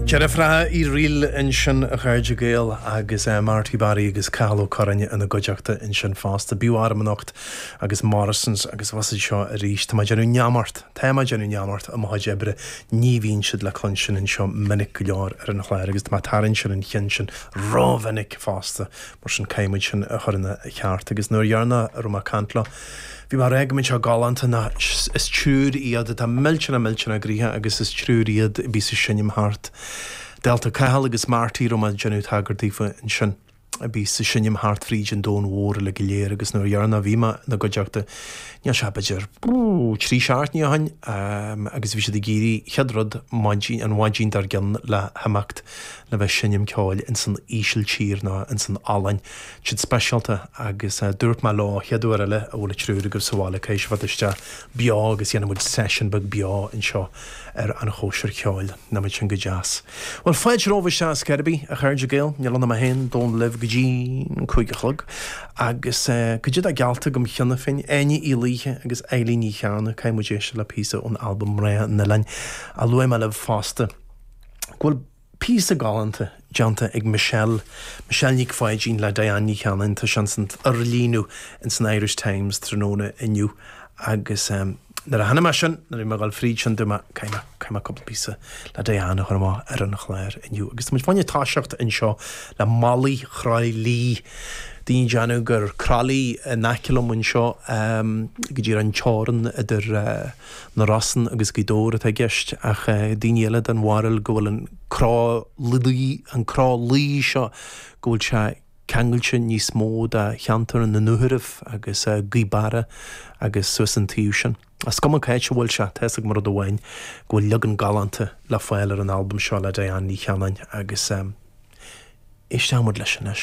Deirfiúracha Uí Fhrighil ansin, a chairde Gael, agus Marty Barry agus Cathal Ó Curráin ina gcuideachta ansin fosta. B'fhiú arm anocht agus Morrisons agus bhí siad seo arís. Tá mé ag déanamh neamart, tá mé ag déanamh neamart i mo chuid oibre, ní bhíonn siad le cluinstin anseo minic go leor ar an chlár agus tá mé ag tarraingt ar an cheann sin ró-mhinic fosta. Mar sin caithfidh muid sin a chur ina cheart. Agus an uair dheireanach a raibh mé ag caint leo, bhí mé ag rá go mbeadh sé galánta ná is triúr iad atá millteanach millteanach gnoitheach agus is triúr iad a bíos ag seinm thart. Dálta Cathal agus Marty a raibh mé ag déanamh tagairt daofa ansin. A bíos ag seinm thart fríd an domhan mhór uilig go léir agus an uair dheireanach a bhí mé ina gcuideachta, níl sé b'fhéidir, trí seachtainí ó shin, agus bhí siad ag éirí chéad rud maidin, an mhaidin dár gcionn le himeacht le bheith seinm ceoil ins an Ísiltír ná ins an Ollainn, set speisialta agus dúirt mé leo chéad uair eile a bhfuil an triúr agaibh sa bhaile caithfidh sibh theacht isteach beo agus dhéanfaidh muid session beag beo anseo ar an Chóisir Cheoil. Nach mbeadh sin go deas. Bhuel fáilte romhaibh isteach ar scor ar bith a chairde Gael níl ionam a haon domhan libh go dtí an cúig a chlog agus cad é atá geallta agam cheana féin Áine Uí Laoithe agus Eilín Ní Chearna caithfidh muid éisteacht le píosa ón albam Mná an Oileáin a luaigh mé libh fosta. go bhfuil píosa galánta déanta ag Michelle, Michelle Nic Pháidín le Diane Ní Chanainn, tá sé ins an fhorlíonadh ins an Irish Times tráthnóna inniu agus ehm nuair a chonaic mé sin, nuair a bhí mé ag dul fríd sin dúirt mé caithfidh mé, caithfidh mé cúpla píosa le Diane a chur amach ar an chlár inniu agus tá muid fá choinne toiseacht anseo le Malaí Chroithlí, daoine ag déanamh gur Croithlí in aice liom anseo ehm go díreach ar an teorainn idir eh. na Rosann agus Gaoth Dobhair atá i gceist ach daoine eile den bharúil go bhfuil an Croithlí, an Croithlí seo, go bhfuil sé ceangailte níos mó de cheantar na Dúchoradh agus Gaoth Beara agus suas an taobh sin. Is cuma c'áit a bhfuil sé, tá fhios agam rud amháin, go bhfuil leagan galánta le fáil ar an albam seo le Diane Ní Chanainn agus éistfidh muid leis anois.